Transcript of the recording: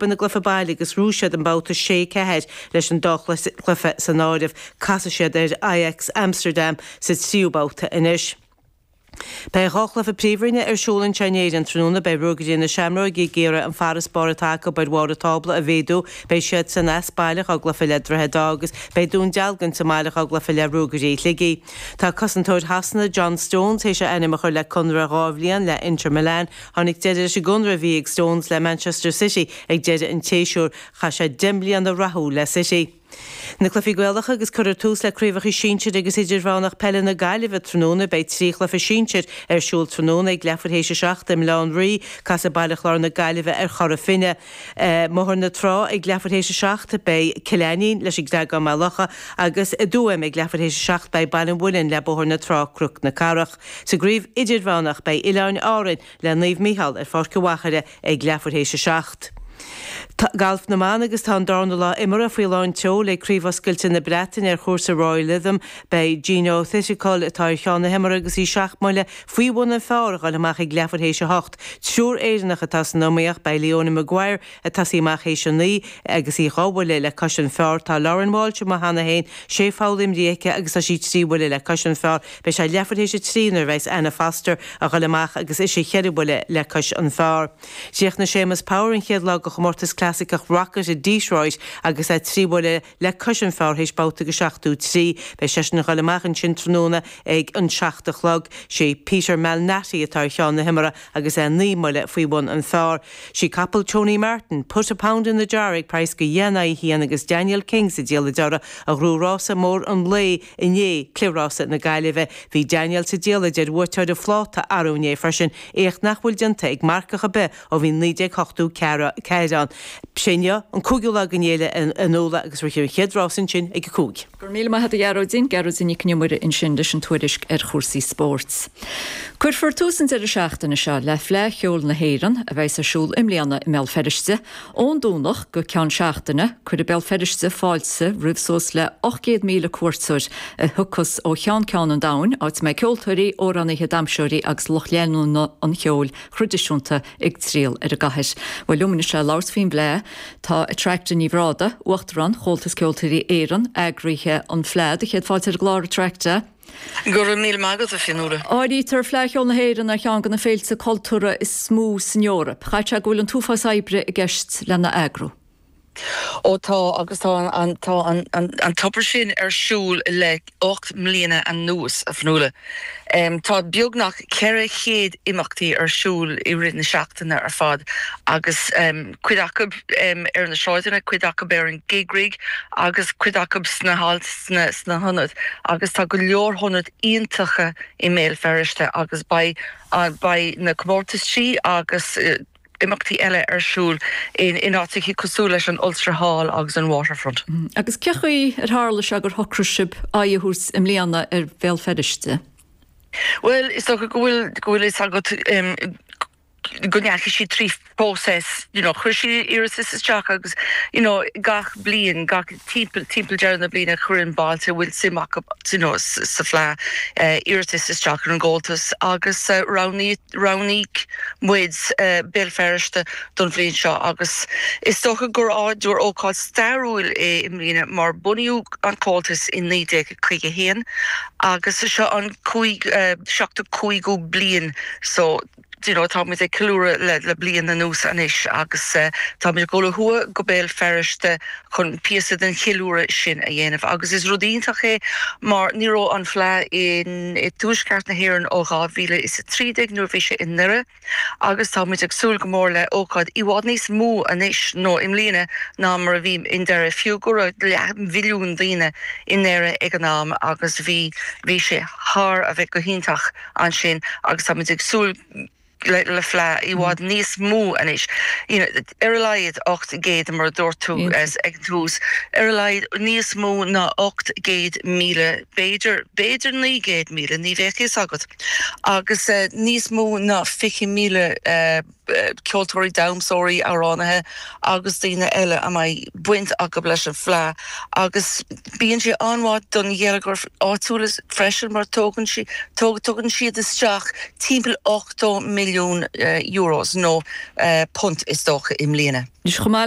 Ina gcluife baile agus ghnóthaigh siad an babhta sé, ceathair leis an dá chluife san áireamh. Casfaidh siad ar Ajax Amsterdam sa tríú babhta anois. Beidh dhá chluife Príomhroinne ar siúl anseo in Éirinn tráthnóna. Beidh Ruagairí na Seamróige ag iarraidh an farasbarr atá acu ar bharr an tábla a mhéadú. Beidh siadsan as baile dhá gcluife le Droichead Átha agus beidh Dún Dealgan sa mbaile dhá gcluife le Ruagairí Shligigh. Tá cosantóir Shasana, John Stones, théis a ainm a chur le conradh dhá bhliain le Inter Milan. Tháinig deireadh leis an gconradh a bhí ag Stones le Manchester City ag deireadh an tséasúir. Chaith sé deich mbliana rathúil le City. Na Cluichí Gaelacha agus cuirfear tús le Craobhacha Sinsir agus Idirmheánach Peile na Gaillimhe tráthnóna Beidh trí chluiche sinsir ar siúl tráthnóna ag leathuair théis 7 i mBaile Átha an Rí, Casfaidh Baile Chláir na Gaillimhe ar Chora Finne. I mBóthar na Trá ag leathuair théis 7 beidh Cill Ainnín leis an gCreagán Maigh Locha agus i dTuaim ag leathuair théis 7 beidh Baile an Mhuilinn le Bóthar na Trá Cnoc na Cathrach. Sa gCraobh Idirmheánach, beidh Oileáin Árainn le Naomh Micheál ar Pháirc an Mhachaire ag leathuair théis a seacht. Galf na mBan agus tá an darna lá imeartha faoi lán tseoil ag Craobh Oscailte na Breataine ar chúrsa Royal Lytham. Beidh Jeeno Thitikul, atá ar cheann na himeartha agus í seacht mbuille faoi bhun an phar, a ghoil amach ag leathuair théis a hocht. Triúr Éireannach atá san iomaíocht, beidh Leona Maguire, ag tosaí amach théis a naoi agus í dhá bhuille le cois an phar. Tá Lauren Walsh amuigh cheana féin, sé pholl imrithe aici agus tá sí trí bhuille le cois an phar. Beidh sé leathuair théis a trí nuair a bheidhs Anna Foster a ghoil amach agus ise cheithre bhuille le cois an phar. Chríochnaigh Séamus Power an chéad lá de chomórtas clasaiceach Rocket i Detroit agus é trí bhuille. le cois an phar théis babhta de seachtó trí. Beidh seisean a dhoil amach ansin tráthnóna ag an seacht a chlog. Sé Peter Malnati atá ar cheann na himeartha agus é naoi mbuille faoi bhun an phar. Sí capall Tony Martin, Put a Pound in the Jar ag praghas de dheich in aghaidh a haon agus Daniel King sa diallait uirthi a ghnóthaigh rása mór an lae inné, Cliath Rása na Gaillimhe. Bhí Daniel sa diallait ar bhuaiteoir an phláta arú inné freisin, éacht nach bhfuil déanta ag marcach ar bith Ó bhí 1984 ann, sé inniu an cúigiú lá den fhéile anúla agus rithfear an chéad rás ansin ag a cúig. Go raibh míle maith a'd a Ghearóidín, Gearóidín Nic an Iomaire ansin leis an tuairisc ar chúrsaí spóirt. Cuirfear tús an deireadh seachtaine seo le Fleadh Cheoil na hÉireann a bheidhs ar siúl i mbliana i mBéal Feirste ón Domhnach go ceann seachtaine. Cuirfidh Béal Feirste fáilte roimh suas le 800,000 cuairteoir a thiocfas ó cheann ceann an domhain, áit a mbeidh ceoltóirí, amhránaithe, damseoirí agus lucht leanúna an cheoil thraidisiúnta ag triall ar an gcathair. Bhuel, liom anois le labhairt faoin bhFleadh. Tá Attracta Ní Bhrádaigh, Uachtarán Chomhaltas Ceoltóirí Éireann, eagraithe an Fleadh. Do chéad fáilte ar an gclár, Attracta. Go raibh míle maith agat, a Fionnuala. Áirítear Fleadh Cheoil na hÉireann ar cheann de na féilte cultúrtha is mó san Eoraip. Caithfidh sé go bhfuil an t-uafás oibre i gceist lena eagrú. Ó tá, agus tá an, tá an, an, an obair sin ar siúl le ocht mbliana anuas, a Fionnuala. Tá beagnach ceithre chéad imeachtaí ar siúl i rith na seachtaine ar fad agus cuid acub ar na sráideanna, cuid acub ar an gig rig agus cuid acub sna halls, sna, sna hionaid agus tá go leor ionaid iontacha i mBéal Feirste agus beidh, beidh na comórtaisí agus. imeachtaí eile ar siúl in áiteachaí cosúil leis an Ulster Hall agus an Waterfront. Agus cén chaoi ar tharla sé gur shocraigh sibh aghaidh a thabhairt i mbliana ar Bhéal Feirste? Bhuel, is dócha go bhfuil go bhfuil a fhios agat go ndeachaigh siad trí phróiseas, you know, chuir siad iarratas isteach agus, you know, gach bliain, gach. timpeall, timpeall deireadh na bliana chuireann bailte a bhfuil suim acu, you know, sa Fleadh iarratais isteach ar an gComhaltas agus roghnaíodh, roghnaigh muid Béal Feirste don bhliain seo agus is dócha gur, gur ócáid stairiúil í i mbliana mar bunaíodh an Comhaltas i 1951 agus seo an cúig, seachtú, cúigiú bliain so. do you know, táimid ag ceiliúradh le bliain anuas anois agus táimid ag dul ó thuaidh go Béal Feirste chun píosa den cheiliúradh sin a dhéanamh agus is rud iontach é mar ní raibh an Fleadh i dTuaisceart na hÉireann ó 2013 nuair a bhí sé i nDoire agus táimid ag súil go mór le hócáid i bhfad níos mó anois nó i mbliana ná mar a bhí i nDoire, fiú go raibh leathmhilliún daoine i nDoire ag an am agus bhí, bhí sé thar a bheith go hiontach. ansin agus táimid ag súil le fleadh i bhfad níos mó anois. Ar a laghad 800, mar a dúirt tú ag an tús, ar a laghad níos mó ná 800,000, b'fhéidir 900,000, ní bheadh a fhios agat, agus níos mó ná 20,000, ceoltóirí, damhsóirí, amhránaithe agus daoine eile a mbeidh baint acu leis an bhFleadh agus bíonn sé an-mhaith don gheilleagar áitiúil freisin mar tugann sí, tugann siad isteach timpeall €80 milliún nó punt is dócha i mbliana. Is chomh maith leis